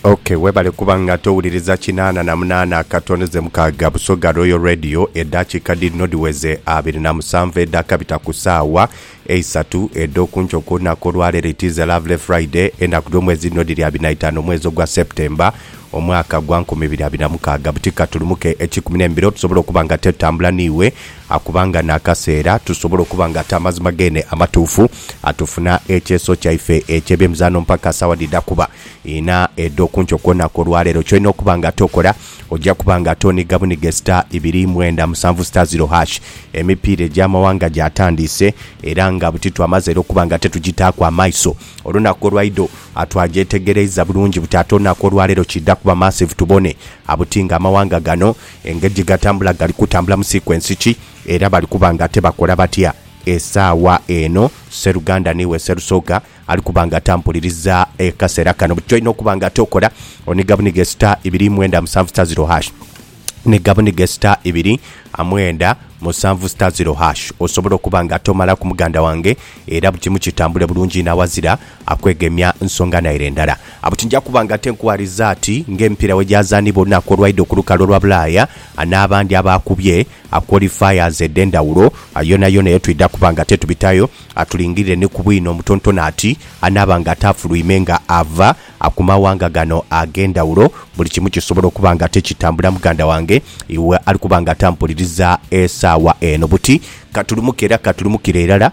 Ok webale kuba nga towuliriza kinaana na munaana akatono ze mukaaga Busoga Royal Radio edhakiika dhidhino dhiweze abiri na musanvu edhakabita ku saawa eisatu edhokunkyo ku lunaku olwaleero it is a lovely Friday enaku dhomwezi dhino dhiri abiri na itaano omwezi ogwa September omwaka gwa nkumi ibiri abiri na mukaaga buti katulumuke ekikumi n'embiro tusobole okuba nga tetutambula niiwe Akuba nga n'akaseera tusobola okuba nga ate amazima geene amatuufu atufuna ekyeso kyaife eky'ebyemizaano mpaka saawa dhidha kuba inha edh'okunkyo. Kwoonaku olwaleero ky'olina okuba nga ate okola, oja kuba nga ate oniga buniga star ibiri mwenda musanvu star ziro hash. Emipiira egy'amawanga gyatandiise era nga buti twamaze era okuba nga ate tugitaaku amaiso. Olunaku olwaidho twagyetegereiza bulungi buti ate olunaku olwaleero kiidha kuba massive tubone buti nga amawanga gano Engeri gye gatambula gali kutambula mu sikwensi ki, era bali kuba ng'ate bakola batya? Esaawa eno sseruganda n'iwe Sserusoga ali kuba ng'ate ampuliriza akaseera kano, buli ky'olina okuba ng'ate okola oniga buniga star ibiri mwenda musanvu star zero hash. Niga buniga star ibiri mwenda musanvu star zero hash osobole okuba ng'ate omalaku muganda wange era buli kimu kitambule bulungi inho awazira Akwegemya nsonga naire ndala. Abo tinja kuba nga tenkuwaliza ati ng'emipiira bwegyazaanibwa olunaku olwaidha okulukalu olwa Bulaaya, n'abandi abaakubye qualifiers edh'endhawulo, yonayona eyo twidha kuba nga tetubitayo. Tulingirire ni ku bwino omutontono ati anaaba nga ataafulwime nga ava ku mawanga gano ag'endhawulo. Buli kimu kisobola okuba nga tikitambula muganda wange iwe ali kuba nga tampuliriza esaawa eno. Buti katulumuke era katulumukire irala.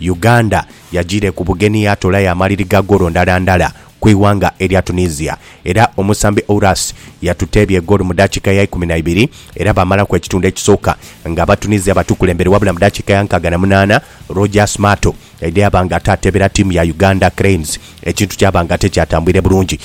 Uganda yajiire ku bugenhi yaatoolayo amaliri ga goolo ndhala ndhala ku ighanga erya Tunisia era omusambi Ourasi yatuteebya egoolo mu dakiika ya ikumi na ibiri era baamalaku ekitundu ekisooka nga Abatunisia batukulembere wabula mu dakiika ya nkaaga na munaana Rogers Mato yaidha yaaba nga ate ateebera tiimu ya Uganda Cranes ekintu kyaba nga tikyatambwire bulungi.